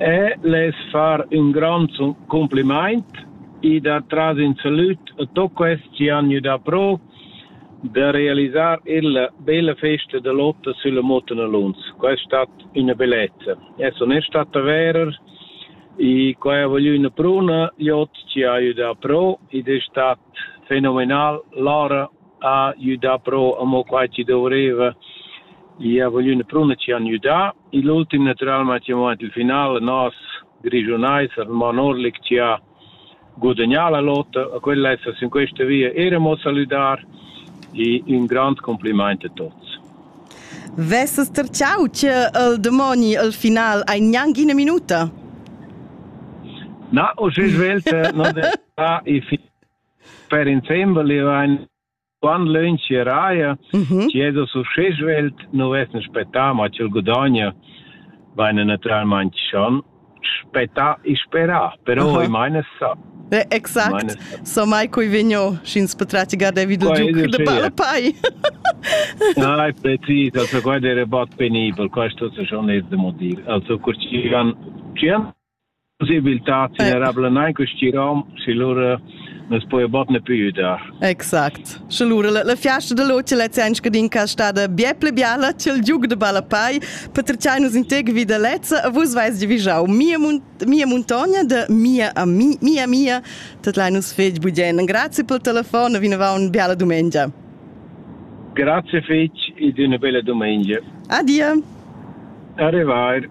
E lez far ün grond cumplimaint i da tras in salüd a tuot quels chi han gnü dapro da realisar illa bella festa da lotta sülla Muttenalunz. Quai es stat üna bellezza. Ais onest stat avair i qua ha voglü üna pruna, gl'ot chi ha gnü dapro ed es stat fenomenal. Lora ha güdà però amo quai chi dovreva i ha voglü ün prun chi han güdà il ultim natüralmaing siamo aint il final nos Grischunais al Mont Orlic chi ha gudagnà la lotta a quella esa sün questa via eir amo salüdar e ün grand complimaint a tuots. Vesses terciau che el demoni al final ein gnanc ina minuta? Na, o si svelte, non è ah, e Per insembel vain quant lönchia raja, chi esa success svelt, nu vessem spettà, ma ch'el gudogna vaina natüralmaing schon spettà e sperà, però Aha. i maina sa. Eh, exact, Meine- so mai cui vigno, sch'ins potrà tigar David il Qua giuc ed de palpai. Ai, precis, also qua era bod penibel, questo se schon es da mo dir. Also, cur ci han, ci han possibiltad generabla nein questi rom se lura nus poi bot ne più dar. Exact. Sche lura la, la fiasta de loce la zen scadin ca stada bia ple biala cel giug de balapai per trcai nus integ vi de lezza a vus vais di vijau mia mun, mia montagna de mia a mi, mia mia tot lai nus fetg bugien. Grazie pel telefon e vineva un biala domenica. Grazie fetg e d'una bella domenica. Adia. Arrivare.